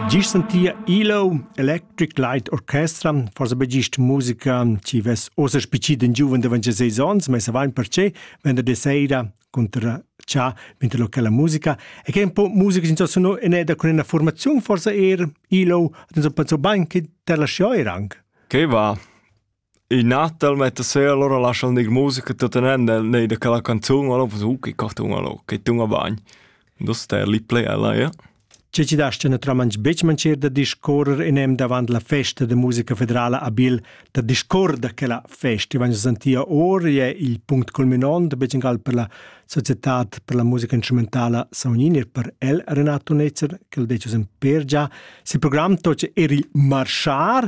Gist sentia Elo Electric Light Orchestra, forsa be gist musica chi vess ossa spichit in giuven da 26 ons, ma savain perche, venderdi sera cunter cha mentre locala musica e che un po' musica in sono in eda con una formazione forse er Ilo hat uns pensò bain che te lasciò er anche. Che va? In Natal metta sera allora lascha'l gnir musica tuttenend el neir da quella canzun o lo uh che cartun o lo che tun a bagn. Do ster lì play ella, ja. Che ci dasti naturalmente becmancer da discorrer in em davant la festa de musica federala a Bil, da discorda che la festa vagn santia or e il punct culminant de becengal per la società per la musica instrumentala Saunini e per el Renato Netzer, che il decis en per già, si program toce er il marchar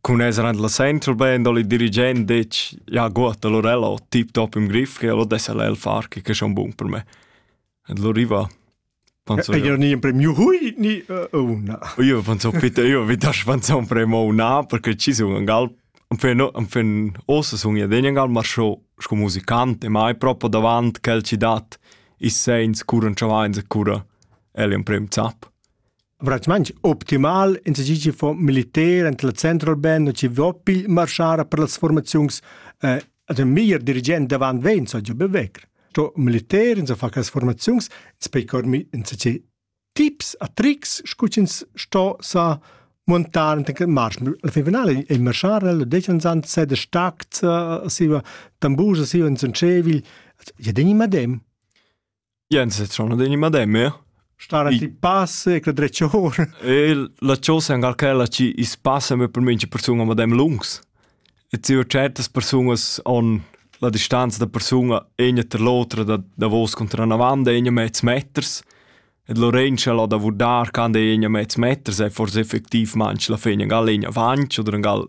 Cun esser en la Central Band ho il dirigent detg «Ja gut, allora ella ho tip-top im Griff, allora dess ella el far, che è schon bun per me». E allora riva Panzò. Io ni in premio hui ni una. Io panzò bitte io vi das panzò un premio una perché ci sun an gal am fen am fen ossa sun ja den gal mar scho sco musicante ma hai proprio davant quel ci dat i sens curan chavains e cura el un premio zap. Veramein optimal enzatgi fo militer enta la Central Band, chi vo pigl marschar per las formaziuns eh, ad ün meglier dirigent davant vegn, so giu be vegr. Sto militer, ins fa quelles formaziuns, ins pei cormi enzatgi tips a tricks, scu ch'ins sto sa montar enta quel marsch. Alla fin finale il marschar, lo decan san se de stact, siva tambur, siva in sun cevil, ja deni madem. Jens, sono degli mademme? Stare ti passe che dreccior. E la chosa è quella ci is passa me per minci persona madem lungs. E ci ho certas personas on la distanza da persona egna ter l'otra da da vos contra una vanda egna mezz meters. E Lorenza la da vurdar can de egna mezz meters è forse effettiv manch la fegna gal egna vanch oder gal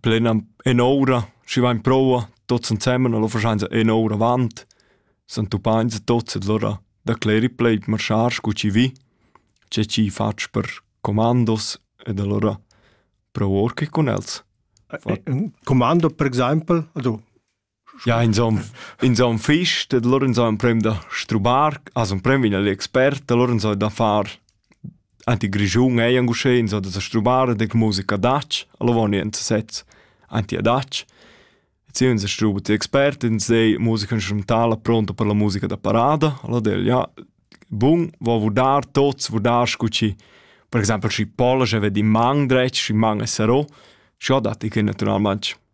plenan en'ora, schi vain proua, tots ensemen, allora faschainsa en'ora avant, s'han tuppainsa tots ed allora decleri pled marchar scu chi vi, che chi fatsch per comandos ed allora prou or che cun els. Fat. Commando per exaimpel? Also Ja, inzon, inzon fich, dad allura inzò emprem da strubar, as emprem vegn l'expert, allura inzò da far anti grischun ei anc uschè, inzò da sa strubar ed eir musica adatg, alura vaun ins sezs anti adatg. E ziun sa struba ti expert, ins dei musica instrumentala pronta per la musica da parada, allura del ja, bun, vo vurdar tots, vurdar scu chi, per exaimpel schi Polasch ved in man dretg, schi man es sarò, scha dat i che natüralmaing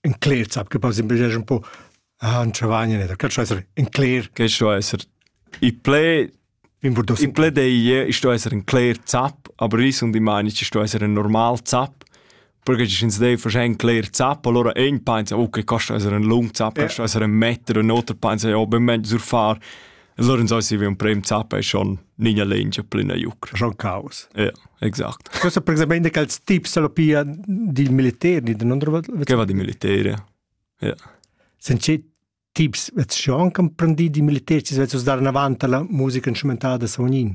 in cler zap che pass in bel un po han chavagnen da cat esser in cler che sto esser i ple in ple dei sto esser in cler zap aber ris und ich meine ich sto esser ein normal zap perché ci ins dei fasce ein clear zap allora ein pensa okay costa essere ein lung zap costa essere ein meter un otro pensa ja ben meglio sur far Allora non sai un prem zappa e schon nina lengia plena iucr. Schon caos. Ja, exact. Questo precisamente che els tips alla pia di militari, di non Che va di militari. Ja. Senza tips, vet schon can prendi di militari, ci vet us dar avanti la musica instrumentale da Sognin.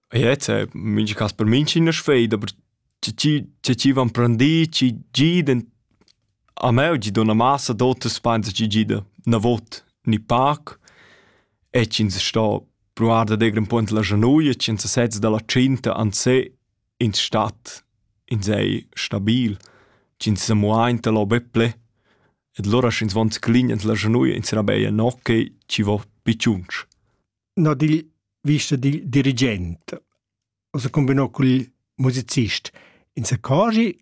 Jetzt, äh, mincha cas per minch üna sfeida, aber chi chi chi chi van prendì, chi gidan a me gi do 'na massa d'autas spans chi gida 'na vot ni pac e ch'ins sto pruvar da dir ün po ins la januia, ch'ins sez da la tschinta an se ins stat ins ei stabil, ch'ins sa muainta lo be ple. E lura sch'ins von sclign ins la januia, ins serà be enoche chi vo pi tschunsch. no dil vista dil dirigent. O se combinò col musicist. In se cogi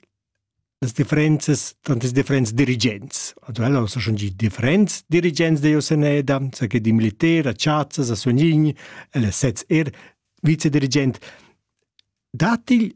las differenzas tant les differents dirigents. Also ella sa schon di differents dirigents de Oseneda, sa che di militer, a Chazzas, a Sognin, ella sez er vicedirigent. Datil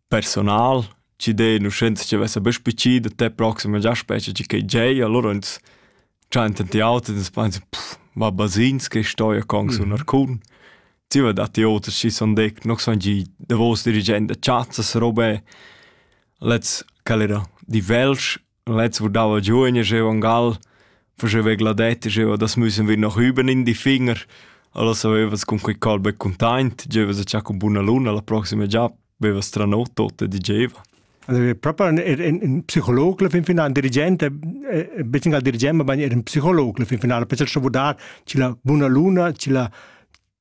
personal ci dei nu scienza che vessa be spici da te proxima già specie ci che gei allora ins già in tanti auti ins pensa pff va basins che stoia con su nar cun ti va datti oter ci son dec no son gi davos dirigent da chazzas robe let's calera di velsch Letz vurdava giugne jeu an Gal, faceva gladetta jeu, das müssen wir noch üben in die Finger. Alla savevas con quei calbe containt, gevas a cha con buna luna la proxima già, bevas tra not tot e digeva. Also wir proprio ein, ein Psychologe fin finale, ein Dirigent, ein bisschen als Dirigent, aber ein Psychologe fin finale, per schon vurdar, c'è la buona luna, c'è la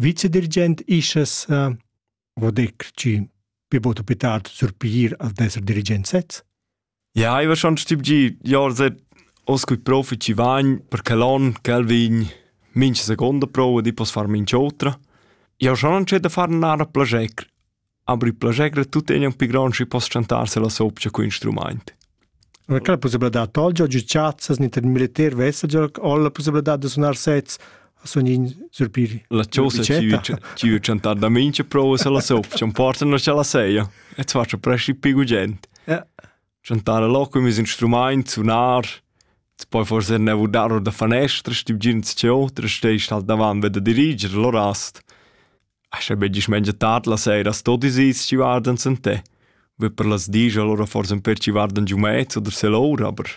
Vicedirigent ischas uh, vo detg chi be bod per tard surpir al d'esser dirigent sez? Ja, iva schon stibgi jar se oscui profi ci vagn per che l'on quel vegn minch seconda prova di poss far minch otra. Ja schon non c'è da far nara plagec Aber il plascher tuttegna ün pi grand schi poss chantar se la sopcha cu instrumaint. Quella possibilità tolgia giu chazzas ni tar militar vessa già o la possibilità da sunar sets a sun in surpiri. La chosa ci u chantar da mincha prova se la sopcha, porta na la seia e ti faccia presci pigu gent. Chantar a loco mis instrumaint, sunar, ti poi forse nevo dar da fanestra, stib gin ti ciò, tra steist halt davan ved da diriger, lo rast. Ascha be dismengia tard la seira sto ti sis chi vardan sen te. Be per las dis allora forsa un per chi vardan giu mez oder se l'ora, aber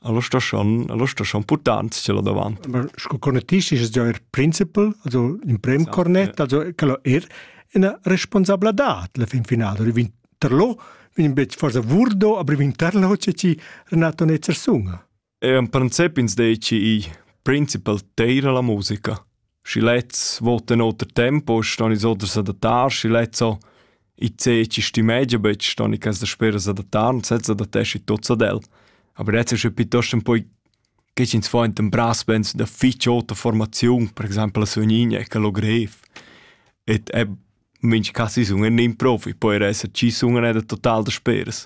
allora sta schon, allora sta schon portant ce là davant. Aber sco conettisch ist es ja er principal, also in prem esatto, cornet, ja. also quello er una responsabilità la fin finale, oder vin terlo, vin bet forse vurdo, aber vin terlo c'è ci Renato Netzer sunga. En princip ins deci igl principal teira la musica. Schi lezs votan oter tempo, ston ins oder s'adattar, schi lezs ho i zeci stimeggia betg, ston i cas da spera s'adattar und sezza adattesci tuts ad el. Aber jetzt ist es piuttosto un po' che ins fa in brass bands da fitch ota formaziun, per exempel a Sugnigna, che lo grev. Et è, minch cas is un in improv, poi er esser ci sun da total da speras.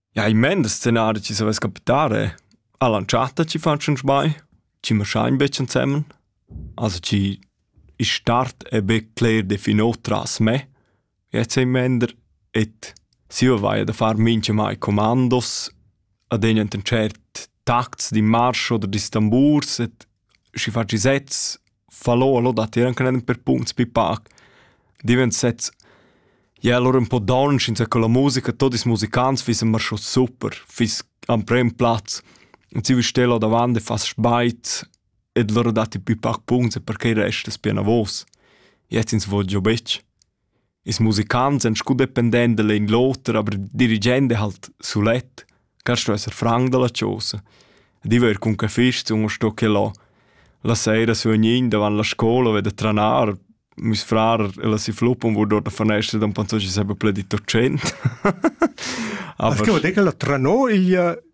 Ja, i mend scenar chi savess capitare. A l'antschatta chi fan schons mai, chi maschain be ensemen. Also chi il start è be cler definò tras me. Jetzt ei mender et si io vaia da far mincha mai comandos ad egn enten tschert tacts di marsch oder di stamburs et schi faci sez falò o lò datier anche nen per punts pi pac divent sezs ja allora un po don schinza con la musica totis musicants fiss immer schon super fiss am prem platz und sie stella davant e fas speit ed loro dati pi pac punts e perché resta es pia navos jetzt ins voglio betg Ils musicants èn sco dependents da l'in l'oter, aber il dirigent è halt sulet. Carst du esser franc da la chosa? Ed i va er cun che fist sun sto che là. La sera sun gnün davant la scola a veder tranar. Meis frar e la si fluppun vor dort a fanestra da un panzo chi s'ha pledito tschient. Ah, perché ho detto che la tranò il